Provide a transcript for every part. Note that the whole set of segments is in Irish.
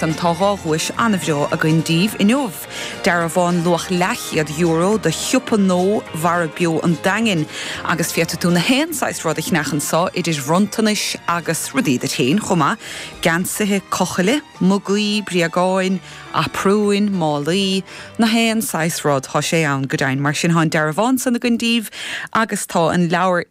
Tá dhá dhuais an-bhreá againn daoibh inniu, dearbhán luach leathchéad-euro do shiopa nó Mara Beo an Daingin, agus féadfaidh tú na haon saghas rud a cheannach anso, idir bhronntanais agus rudaí duit féin chomh maith, geansaithe cochaill, mugaí, bréagáin, aprúin, málaí, na haon saghas rud, tá sé ann go deimhin. Mar sin, tá an dearbhán san againn daoibh agus tá an leabhar.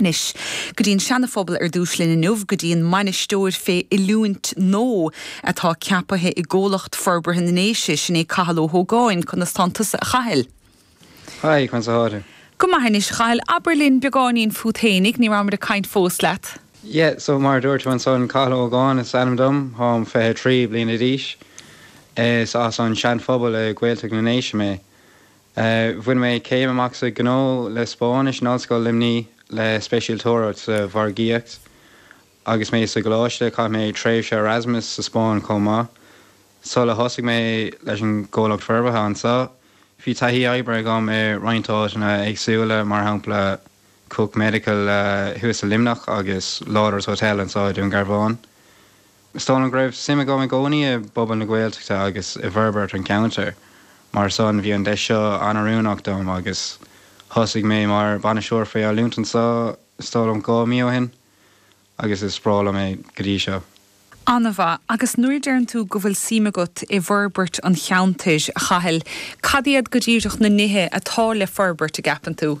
Anois, go dtí an Seanaphobal ar dtús linn inniu, go dtí an mbainisteoir fé oiliúint nó atá ceapaithe i gComhlucht Forbartha na nDéise, sin é Cathal Ó hÓgáin. Conas tánn tusa a Chathail? Haigh, conas athá tú? Go maith anois, Chathail, abair linn beagáinín fút fhéinig, ní rabhamair ag caint fós leat. Yeah, so mar a dúirt tú ansan, Cathal Ó hÓgáin is ainm dom, tháim fiche trí bliana d'aois. Is as an Seanphobal i Gaeltacht na nDéise mé. Bhain mé céim amach sa Ghnó le Spáinnis in Ollscoil Luimní le speisialtóireacht sa mhargaíocht. Agus mé sa gcoláiste chaith mé tréimhse Erasmus sa Spáinn chomh maith. Sula thosaigh mé leis an gComhlacht Forbartha anseo, bhí taithí oibre agam i roinnt áiteanna éagsúla, mar shampla Cook Medical thuas i Luimneach agus Lawlor's Hotel anseo i Dún Garbhán. Is dóigh liom go raibh suim agam i gcónaí i bpobal na Gaeltachta agus i bhforbairt an cheantair, mar san bhí an deis seo an-oiriúnach dom agus thosaigh mé mar Bhainisteoir faoi Oiliúint anseo is dóigh liom dhá mí ó shin agus is breá liom é go dtí seo. An-mhaith. Agus nuair a deireann tú go bhfuil suim agat i bhforbairt an cheantair, a Chathail, cad iad go díreach na nithe atá le forbairt, a gceapann tú?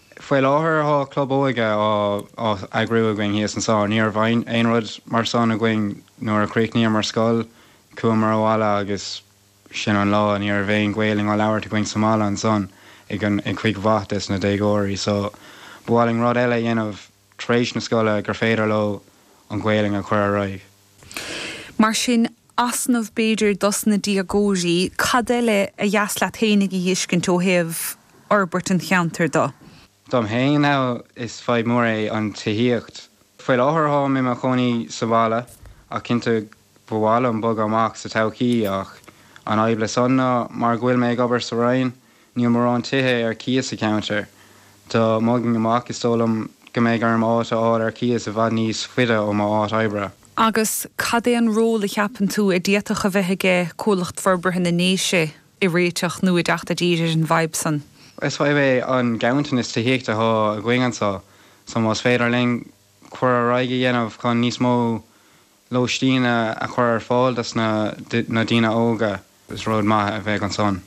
Faoi láthair tá club óige á eagrú againn thíos anso. Ní raibh aon rud mar san againn nuair a chríochnaíomar scoil. Chuamar abhaile agus sin an lá. Ní raibh aon Ghaolainn á labhairt againn sa mbaile ansan ag cuid mhaith des na déagóirí so ba mhaith linn rud eile a dhéanamh. tar éis na scoile gur féidir leo an Ghaelainn a chur ar aghaidh. Mar sin, easnamh b'fhéidir dos na déagóirí, cad eile ba dheas leat féinig a fheiscint ó thaobh fhorbairt an cheantair do? Dom fhéin is fadhb mór é an tithíocht. Faoi láthair táim i mo chónaí sa bhaile ach cinnte go. Ba mhaith liom bogadh amach sa todhchaí ach an fhadhb le san ná mar go bhfuil mé ag obair sa Rinn níl morán tithe ar cíos sa cheantar. Dá mbogfainn amach is dóigh liom go mbeidh orm áit a fháil ar cíos i bhfad níos faide ó mo áit oibre. Agus cad é an ról a cheapann tú a d'fhéadfadh a bheith aige Comhlucht Forbartha na nDéise i réiteach nó i dteacht i dtír ar an bhfadhb san? Is fadhb é an ganntanas tithíochta atá againn anso so más féidir linn cur ar aghaidh a dhéanamh chun níos mó lóistín a chur ar fáil do na daoine óga. Is rud maith a bheadh ansan.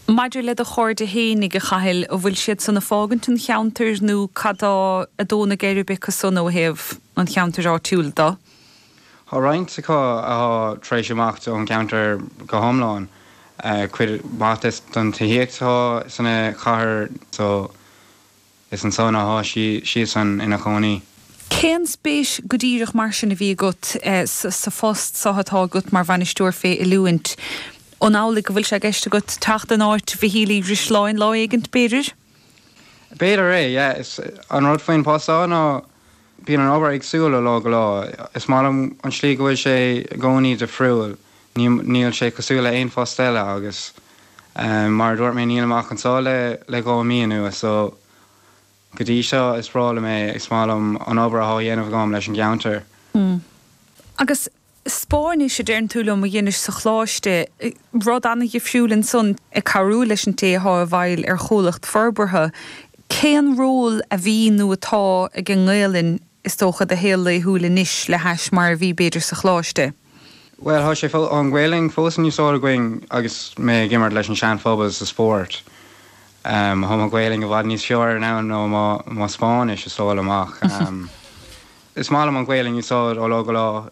Maidir le do chairde fhéinig, a Chathail, an bhfuil siad san ag fágaint an cheantair nó cad tá ag dó na geirbe acu san ó thaobh an cheantair áitiúil de? Tá roinnt acu athá tar éis imeacht ón gceantar go hiomlán, cuid mhaith des don tithíocht athá sa chathair so. Is ansan athá siadsan ina chónaí. Cén spéis go díreach mar sin a bhí agat sa phost so atá agat mar Bhainisteoir fé Oiliúint? An amhlaidh go bhfuil sé i gceist agat teacht in áit Mhichíl Uí Dhrisleáin lá éigint, b'fhéidir? B'fhéidir é, yeah. Is an rud faoin post so ná. Bíonn an obair éagsúil ó lá go lá. Is maith liom an tslí go bhfuil sé i gcónaí difriúil. Níl sé cosúil le haon phost eile agus mar a dúirt mé nílim ach anseo le dhá mí anuas so go dtí seo is breá liom é. Is maith liom an obair atá á dhéanamh agam leis an gceantar. Agus Spáinnis, a deireann tú liom, a dheinis sa choláiste. Rud an-dhifriúil ansan, ag cabhrú leis an té atá i bhfeighil ar chomhlacht forbartha. Cén ról a bhí nó atá ag an nGaelainn, is dócha, i do shaol laethúil anois le hais mar a bhí, b'fhéidir, sa choláiste? Bhuel, tá sé, an Ghaelainn, fós in úsáid againn agus mé ag imirt leis an Sean-Phobal sa spórt. Tá mo Ghaelainn i bhfad níos fearr in ann ná mo Spáinnis, is dóigh liom, ach is maith liom an Ghaelainn a úsáid ó lá go lá.